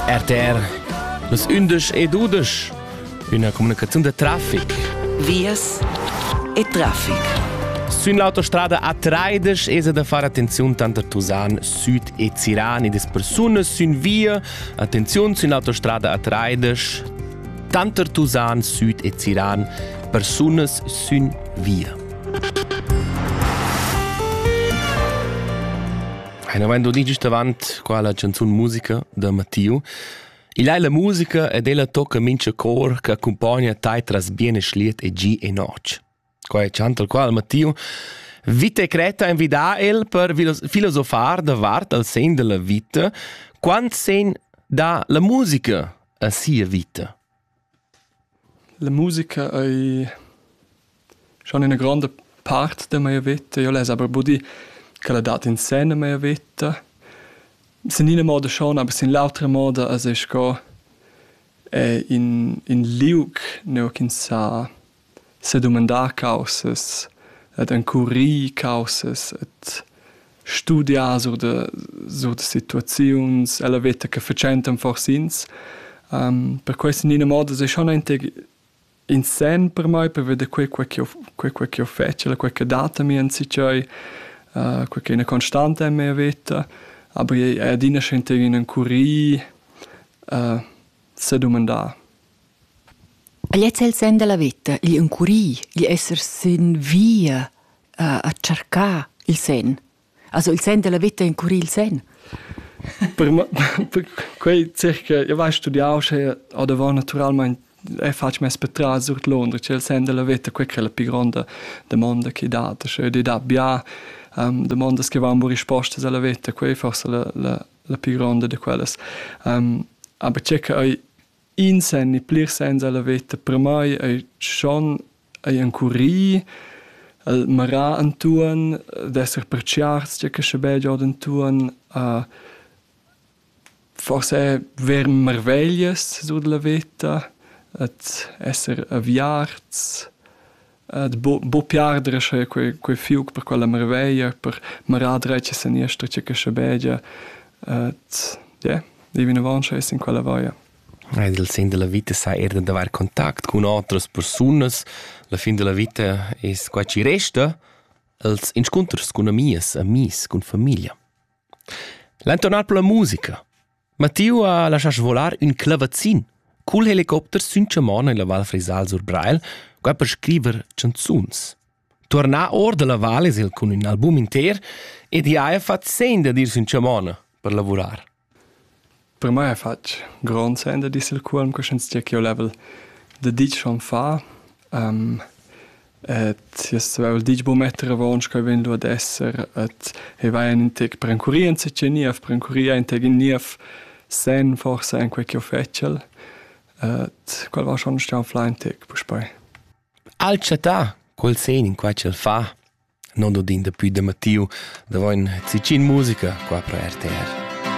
RTR Los undisch e dudisch Üna comunicaziun de traffic Vias e traffic Sün l'autostrada A30 es da far attenziun tanter Tusan Süd e Ziran e des persunas sün via. Attenziun sün l'autostrada A30 tanter Tusan Süd e Ziran persunas sün via. Ein havein doni giust avant qua la canzun musica da Mattiu. Il ei la musica ed ella tocca mincha cor che accumpogna tai tras bien e schliet e gi e noc. Qua è chant al qual Mattiu Vita creta invida el per filosofar da vart al sen della vita, quant sen da la musica a sia vita. La musica ei schon ina gronda part da mia veta. Io less aber buddir ch'ella dat in sen a mia veta. Sin ina moda schon, aber sin l'autra moda as es sco in, in liug, nua ch'ins sa sedumandar caussas ed encurir caussas ed studiar sur da sur da situaziuns ella veta che fatschentan forsa ins. Um, per questo in ina moda è schon in sen per mai per vedere quel quel che ho quel quel che ho fatto, quel che data mi in sicei, uh, quel che è una constante in mia vita, aber è adina schon in encurir uh, sedumandar. Igl è il senn da la veta, gli encurir, gli esser sin via a, a tschercar il senn. Also il senn della vita encurir il senn. per, me, per quei circa, io vai studiau sche a davant naturalmente e faccio mes per tras sur Londra, c'è il sen della vita, quella è la più grande domanda che dà, cioè di dà bia um, domande che vanno risposte alla vita, quei forse la, la, la pü gronda da quellas. Um, aber c'è che ei in sen e plir sens alla veta per mai ei schon ei encurì el marà antuon d'esser perciars c'è che sche be giod antuon uh, forse ver marveglias sur la veta et esser aviarts Buca bu pli ardere sche quei quei fiug per quella marveglia, per marar dretg e seniester tge che schabegia. Et ie, dei vinavon sche es in quella vaia. Ed il sen della vita sa er da davar contact cun otras persunas. La fin della vita es quai chi resta els inscunters cun amias, amis, cun famiglia. L'an tornar per la musica. Mattiu ha laschà svolar ün clavazzin cul helicopter sün chaman illa Val Frisal sur Breil, qua per scriver chanzuns. Tuornà our da la val es el cun ün album inter ed i haja fat sen dad ir sün chaman per lavurar. Per mai ha fatg grond sen da disser cuolm cuscienz tg'eu level da dit schon fa. Um, Tiers vul ditg buca metter avon sch'ei vegn lu ad esser. Et ei vai in tec perencurì enzatgei niev, perencurì entgin niev senn forsa en quei ch'jeu fetschel. Et quel va schon stau flà in tec puspei. Al chattà quel sen in quei ch'el fa, non dod in daplü da Mattiu, davo in zicin musica qua pro RTR.